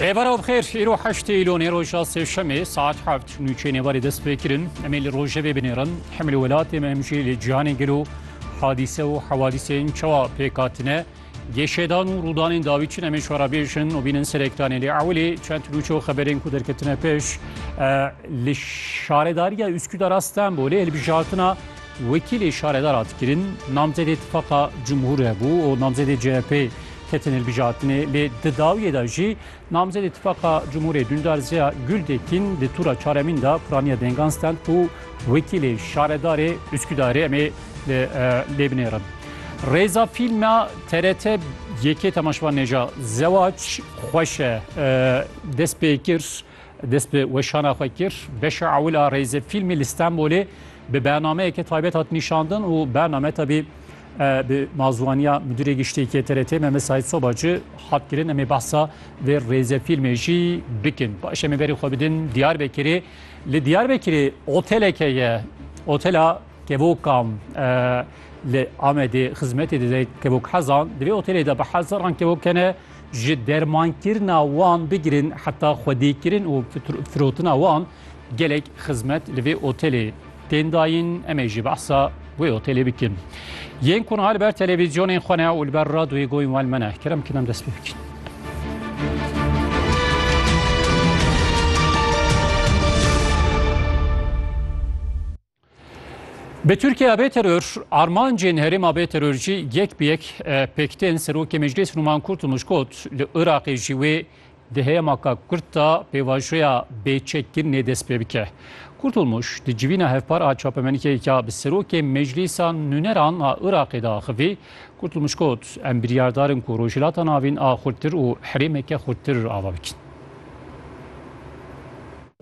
Rêbera bixêr îro heştê îlonê roja sêşemê saet heft nûçeyê nêvarê dest pê kirin em ê li rojevê binêrin hemilê welatê me em jî li cîhanê gelo hadîse û hewadîsên çawa pêk hatine gêşêdan û rûdanên dawî çin em ê şora bêjin û bînin serêktanê lê ewilê çend nûçe û xeberên ku derketine pêş li şaredariya Üsküdar'a Stenbolê hilbijartina wekîlê şaredara dikirin namzedê tifaqa cumhûr hebû û namzedê CHP'ê Ketin hilbijartinê lê di dawiyê de jî namzedê Tifaqa Cumhurê Dundar Ziya Gultekin di tûra çaremîn de piraniya dengan stend ku wekîlê şaredarê Uskûdarê em ê li lê binêrin. Rêza fîlma TRT yekê temaşvanê ja Zewac xweş e dest pê kir. Dest bi weşana xwe kir. Beşa ewil a rêzê fîlmê li Stenbolê bi bernameyeke taybet hat nîşandin û bername tevî bi mazwaniya Midûrê Giştî yê TRT Mehmet Saîd Sobacı hat kirin. Em ê behsa vê rêzê fîlmê jî bikin. Baş em ê berê xwe bidin Diyarbekirê. Li Diyarbekirê oteleke ye. Otela Kevokam li Amedê xizmetê dide kevok hezan. Di vê otelê de bi hezaran kevok hene. ji dermankirina wan bigirin heta xwedêkirin û firotina wan gelek xizmet li vê otelê tên dayîn. Em ê jî behsa wê otelê bikin. Yên ku niha li ber televîzyonên xwe ne û li ber radoyê goyên wan me ne, kerem bikin em dest pê bikin. Bi Tirkiya bê teror, armancên herêma bê teror jî yek bi yek pêktên Serokê Meclîs Numan Kurtulmuş got li Iraqê jî wê di heyema ka Kurd de pêvajoya bêçekkirinê dest pê bike. Kurtulmuş di civîna hevpar a çapemenîkeyeke bi Serokê Meclîsa Nûneran a Iraqê de axivî, Kurtulmuş got, Em biryardar in ku Rojhilata Navîn a xurttir û herêmeke xurttir ava bikin.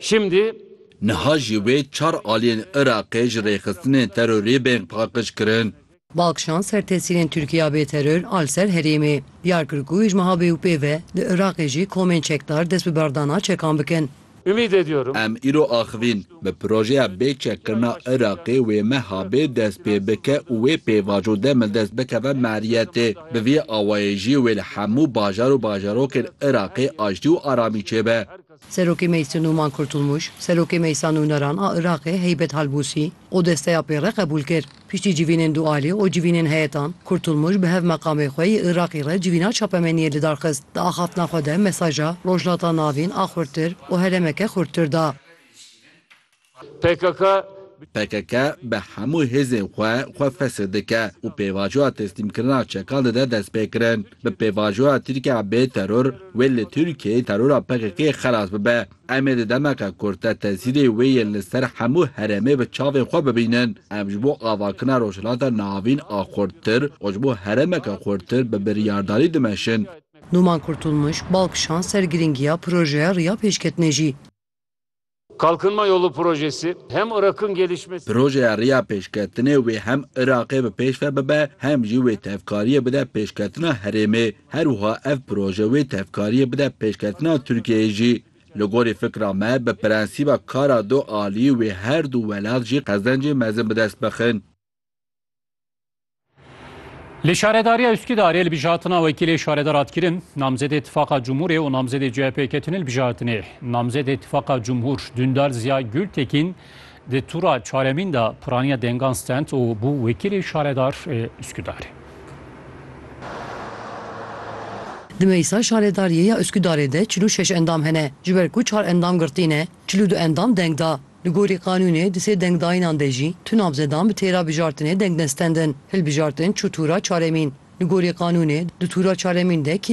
Şimdî Niha jî wê çar aliyên Iraqê ji rêxistinên terorî bên paqij kirin. Balkşan ser tesîrên Tirkiye ya bêteror a li ser herêmê, diyar kir ku ji meha bê û pê ve li Iraqê jî komên çekdar dest bi berdana çekan bikin. Em îro axivîn, bi projeya bê çekkirina Iraqê wê meha bê dest pê bike û wê pêvajo demil dest bikeve meriyetê. Bi vî awayê jî wê li hemû bajar û bajarokên Iraqê aştî û aramî çêbe. Serokê Meclsê Numan Kurtulmuş, Serokê Meclsa Nûneran a Iraqê Heybet Halbûsî û desteya pê re qebûl kir. Piştî civînên dualî û civînên heyetan, Kurtulmuş bi hev meqamê xwe yê Iraqê re civîna çapemeniyê lidar xist. Di axaftina xwe de mesaja Rojhilata Navîn a xurttir û herêmeke xurttir da. pkk, PKK bi hemû hêzên xwe xwe fesih dike û pêvajoya teslîmkirina çekan dide destpêkirin. Bi pêvajoya Tirkiye bê teror, wê li Tirkiyeyê terora PKK'ê xelas bibe. Em ê di demeke kurt de tesîrê wê yên li ser hemû herêmê bi çavên xwe bibînin. Em ji bo avakirina Rojhilata Navîn a xurttir û ji bo herêmeke xurttir bi biryardarî dimeşin. Numan Kurtulmuş bal kişand ser girîngiya projeya Riya Pêşketinê jî. Kalkınma Yolu Projesi hem Irak'ın gelişmesi. Projeya rêya pêşketinê wê hem Iraqê bi pêş ve bibe hem jî wê tevkariyê bide pêşketina herêmê. Her wiha ev proje wê tevkariyê bide pêşketina Tirkiyeyê jî. Li gorî fikra me bi prensîba kara du aliyî wê her du welat jî qezencê mezin bi dest bixin. Li Şaredariya Üsküdarê li bijatina wekîlê şaredar hat kirin, namzedê Tifaqa Cumhurê û namzedê CHP'ê ketine li bijatinê. Namzedê Tifaqa Cumhur Dündar Ziya Gültekin di tura çaremîn de piraniya dengan stend û bû wekîlê şaredar ê Üsküdarê. Di meclisa şaredariyê ya Üsküdarê de çil û şeş endam hene. Ji ber ku çar endam girtî ne, çil û du endam deng da. Li gorî qanûnê di sê dengdayînan de jî tu namzedan bi têra bijartinê deng nestendin. Hilbijartin çû tûra çaremîn. Li gorî qanûnê di tûra çaremîn de kê